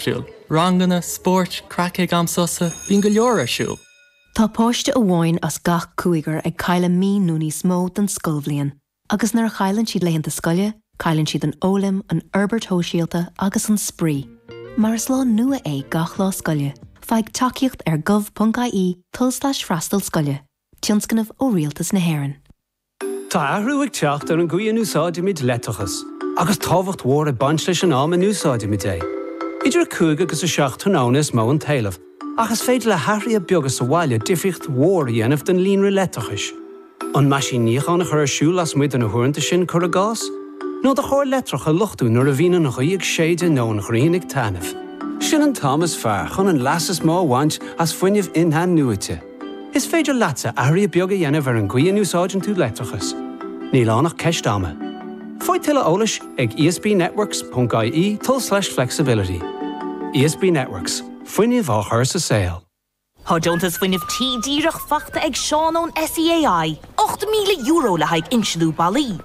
siúl. Ranganna, spórt, craic ag am sosa, bíonn go leor ar siúl. Tá páiste amháin as gach cúigear ag cailleadh mí nó níos mó den scoilbhliain agus nuair a chailleann siad laethanta scoile, cailleann siad an fhoghlaim, an fhorbairt shóisialta agus an spraoi. Mar is lá nua é gach lá scoile, faigh tacaíocht ar gov.ie, tulslais freastal scoile, tionscnamh ó Rialtas na hÉireann. Tá athrú ag teacht ar an gcaoi a n-úsáidimid leictreachas, agus tábhacht mhór ag baint leis an am a n-úsáidimid é. Idir 5 agus 7 tráthnóna is mó an t-éileamh, ach is féidir le hathruithe beaga sa bhaile difríocht mhór a dhéanamh don líonra leictreachais. An meaisín níocháin a chur ar siúl lasmuigh de na huaireanta sin, cuir i gcás? Nó do charr leictreach a luchtú nuair a bhíonn an ghaoth ag séideadh nó an ghrian ag taitneamh? Sin an t-am is fearr chun an leas is mó a bhaint as fuinneamh in-athnuaite. Is féidir leatsa athruithe beaga a dhéanamh ar an gcaoi a n-úsáideann tú leictreachas, níl ann ach ceist ama. Faigh tuilleadh eolais ag esbnetworks.ie tulslais flexibility. ESB Networks, fuinneamh á chur sa saol. Tá deontas Fuinnimh Tí díreach faighte ag Seán ón SEAI, €8,000 le haghaidh insliú ballaí.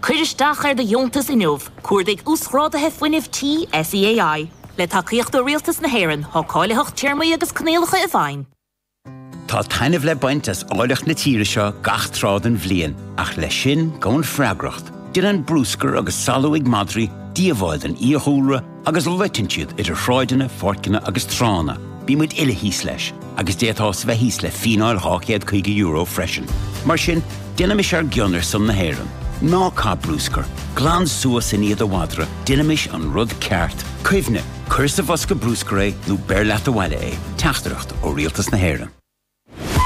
Cuir isteach ar do dheontas inniu, cuardaigh Uasghráduithe Fuinnimh Tí SEAI. Le tacaíocht ó Rialtas na hÉireann, tá cáilitheacht téarmaí agus coinníollacha i bhfeidhm. Tá taitneamh le baint as áilleacht na tíre seo gach tráth den bhliain, ach leis sin gabhann freagracht. Déanann brúscar agus salachar madraí díobháil don fhiadhúlra, agus loiteann siad idir shráideanna, pháirceanna agus tránna, bíonn muid uile thíos leis agus d'fhéadfása bheith thíos le fíneáil €250 freisin. Mar sin, déanaimis ár gcion ar son na hÉireann. Ná caith brúscar, glan suas i ndiaidh do mhadra, déanaimis an rud ceart. Cuimhnigh, cuir sa bhosca brúscair é nó beir leat abhaile é. Teachtaireacht ó Rialtas na hÉireann.